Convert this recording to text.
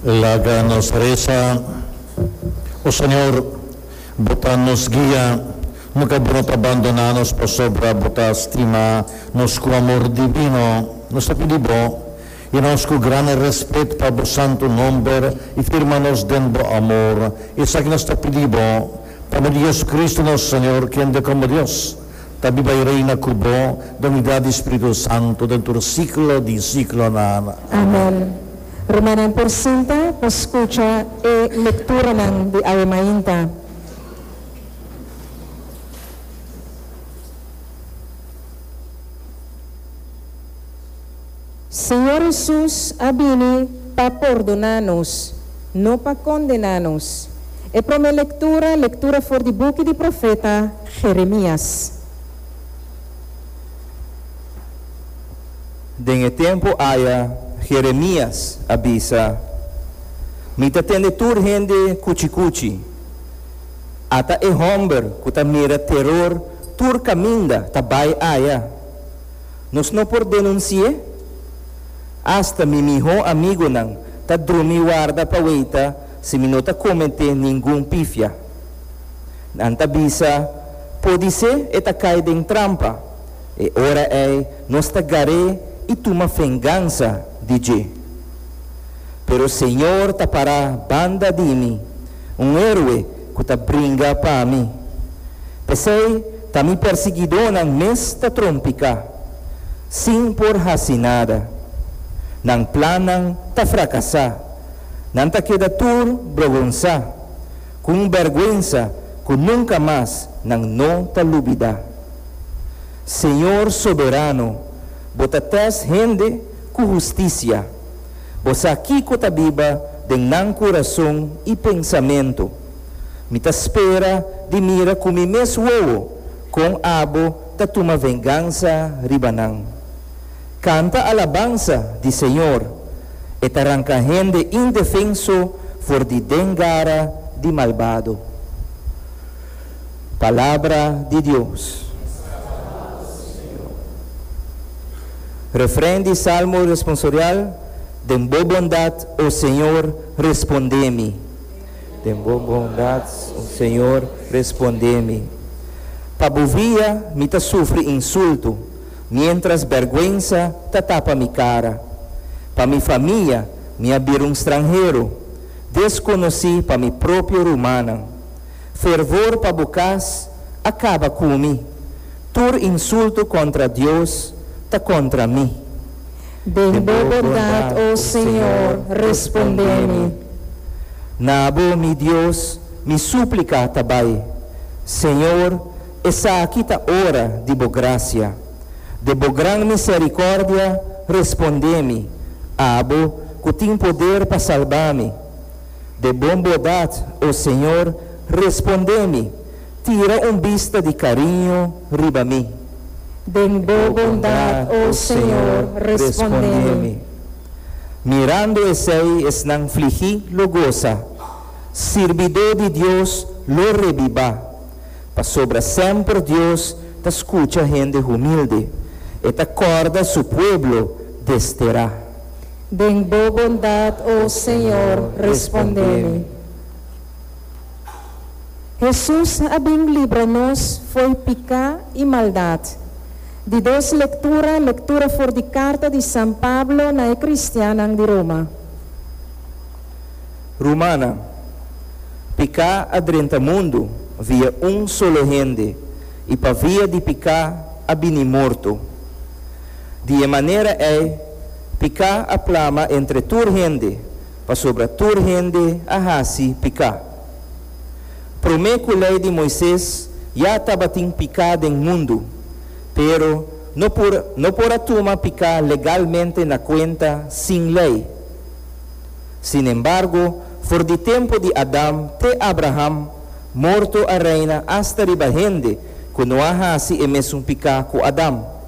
Laga nos resa, O Señor, Bo ta nos guia, nunca Bo no ta bandona nos pasobra Bo ta stima nos cu amor divino. Nos ta pidi Bo, y nos cu grandi respet pa Bo santo nomber y firma nos den Bo amor, esaki nos ta pidi Bo, pa medio di Jesucristo nos Señor, kende como Dios, Ta di bai reina ku bo den unidat di spiritu santu den tur siklo di siklonan. Amen. Rumannan por sinta pa skucha e lekturanan di awe mainta. Señor Hesus a bini pa pordoná nos, no pa kondená nos. E promé lektura, lektura for di buki di profeta Jeremias. Den e tempu aya Jeremias a bisa, Mi ta tende tur hende kuchi kuchi, ata e hòmber ku ta mira teror tur kaminda ta bai aya. Nos no por denunsi'é? Asta mi mihó amigunan ta drumi warda pa weita si mi no ta kometé ningun pifia. Nan ta bisa, Podisé e ta kai den trampa. E ora ei nos ta gar'é i tuma fengansa di dje. Pero Señor ta pará banda di mi, un héroe ku ta bringa pa mi. P'esei ta mi persigidónan mes ta trompiká, sin por hasi nada. Nan plannan ta frakasá, nan ta keda tur brogonsá, ku un bèrgwensa ku nunka mas nan no ta lubidá. Señor Soberano, bo ta tèst hende ku hustisia. Bo sa kiko ta biba den nan kurason i pensamentu. Mi ta spera di mira ku mi mes wowo kon abo ta tuma vengansa riba nan. Kanta alabansa di Señor, E ta ranka hende indefenso for di den gara di malbado. Palabra di Dios. Refren di Salmo Responsorial, Den bo bondad, o Señor, respondé mi. Den bo bondad, o Señor, respondé mi. Pa bo via mi ta sufri insulto, mientras berguensa ta tapa mi cara. Pa mi famia mi a bira un stranhero, desconoci pa mi propio rumannan. Fervor pa bu cas a caba cu mi. Tur insulto contra Dios ta contra mi. Den bo bondad, o Señor, responde mi. Na bo, mi Dios, mi suplica ta bay. Señor, esaki ta ora di bo gracia. De bo gran misericordia, responde mi, abo cu tin poder pa salba mi. De bon bordad, o Señor, respondé mi, tira un bista di cariño riba mi. Den bo bondad, o Señor, respondé mi. Mirando esei esnan fligi lo goza, sirbidó di Dios lo rebibá, pasobra semper Dios ta scucha hende humilde, e ta corda su pueblo desterá. Den bo bondad, o Señor, respondé mi. Hesus a bin libra nos fo'i picá i maldad. Di dos lectura, lectura for di carta di San Pablo na e cristiannan di Roma. Rumannan, picá a drenta mundu via un solo hende i pa via di picá a bini morto. Di e manera ei Piká a plama entre tur hende, pasobra tur hende a hasi piká. Promé ku Lei di Moises ya tabatin piká den mundu, pero no por no por a tuma piká legalmente na kuenta sin Lei. Sin embargo, for di tempu di Adam te Abraham, morto a reina asta riba hende ku no a hasi e mesun piká ku Adam.